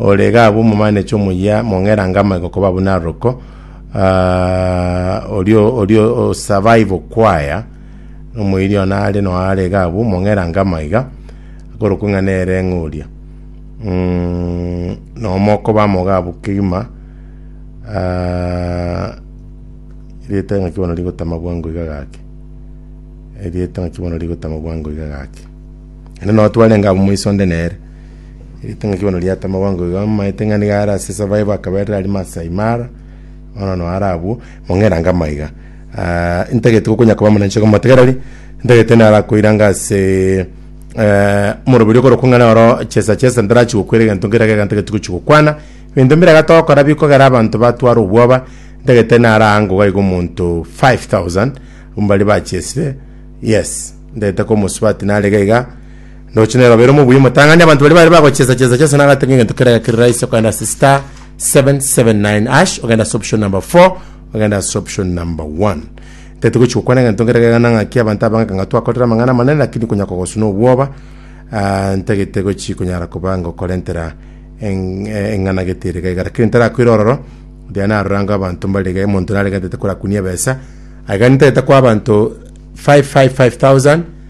Ore gabwo omomanechi omoyia mong'erange amaigo koba buna aroroko, oria oria osurvive okwaya omoiri one are no are gabwo mong'erange amaiga akorokwa ng'a nere ng'a oria mm, nomo okoba amo gabwo kegima erieta ng'aki bono rigotama bwango iga gaki erieta ng'aki bono rigotama bwango iga gaki. Naende noo twarenge abwo moiso onde nere. Eritang'ani bono riata amabaango iga, amaete ng'a nigo are ase esaba yaye bakaberera arimo ase Aimara, bono nao are abwo, mong'erange amaiga. Ah, intagete gokonya koba omonenchoka omotegereri, intagete naro akoiranga ase eh, omoroberi okorokwa ng'a noro chesa chesa ntarachi gokwera egento nkere egeka ntageti gochi gokwana, ebinto mbire iga togokora bikogera abanto batwara obwoba, ntagete naro aango iga iga omonto 5000 mbare bachesire, yes, ntagete komosubati nare iga iga. Noche nero bere omobuya omotang'ani abanto baria bare bagochesa chesa chesa nagate ng'a egento kerage kere rahisi okogenda ase star 779 ash ogenda ase option number 4 ogenda ase option number 1 tete gochi gokwana egento nkere gegana ng'aki abanto abang'aka ng'a twakorire amang'ana amanene lakini konya kogosuna obwoba ah, ntagete gochi konyara koba ngokorentera eng- eh, eng'ana gete ere gaiga lakini ntarakwera ororo buya narorango abanto mbare iga omonto narenge ntete korakunia ebesa aiga ntete kwa abanto 555000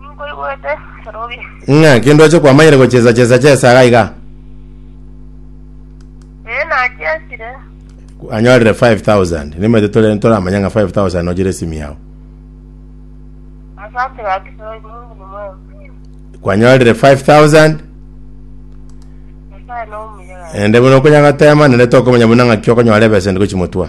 Ninkoigwete Kerobi. Ng'a kende oche kwamanyire gochesa chesa chesa iga iga. Ee nachesire. Anyorire 5000. Nimete tore toramanya ng'a 5000 nojire simu yao. Asante gaki Kerobi Mungu ni mwema. Kwanyorire 5000 Nyasaye nomuya gaki. ende buna okonyagotema nende tokomanya buna ng'aki okonyora ebesa ende gochimotwa.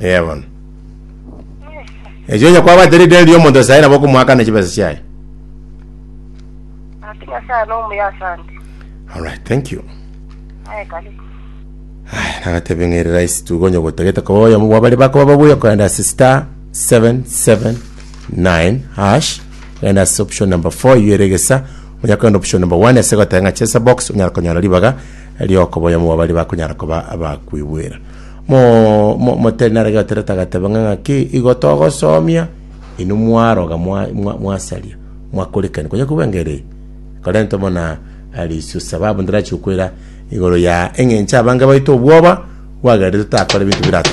Ee bono. Echi onye kwabate rideni ria omonto sayi nabo okomoakana chibesa chiaye. Ati Nyasaye nomuya asante. All right, thank you. Aye karibu. Aya, nagatebe ng'eri rahisi tu gonye gotagete koba oyomo bwabare bakoba babuya kogenda ase star 779 hash genda ase option number 4 iyo ere egesa onya kogenda option number 1 ase goteba ng'a chesa box onyara konyora ribaga Rioko boyomo bwa baria bakonyara koba abakwigwera. Mo, mo, motari nare gaterete agateba ng'a ng'aki igo togosomia, inwe mwaroga mwa, mwa, mwasaria, mwakorikani konya kobua engeri eye. Korente mona arisio sababu ndirachi gokwera igoro ya eng'encho abange baito obwoba bwagerete totakora ebinto birato.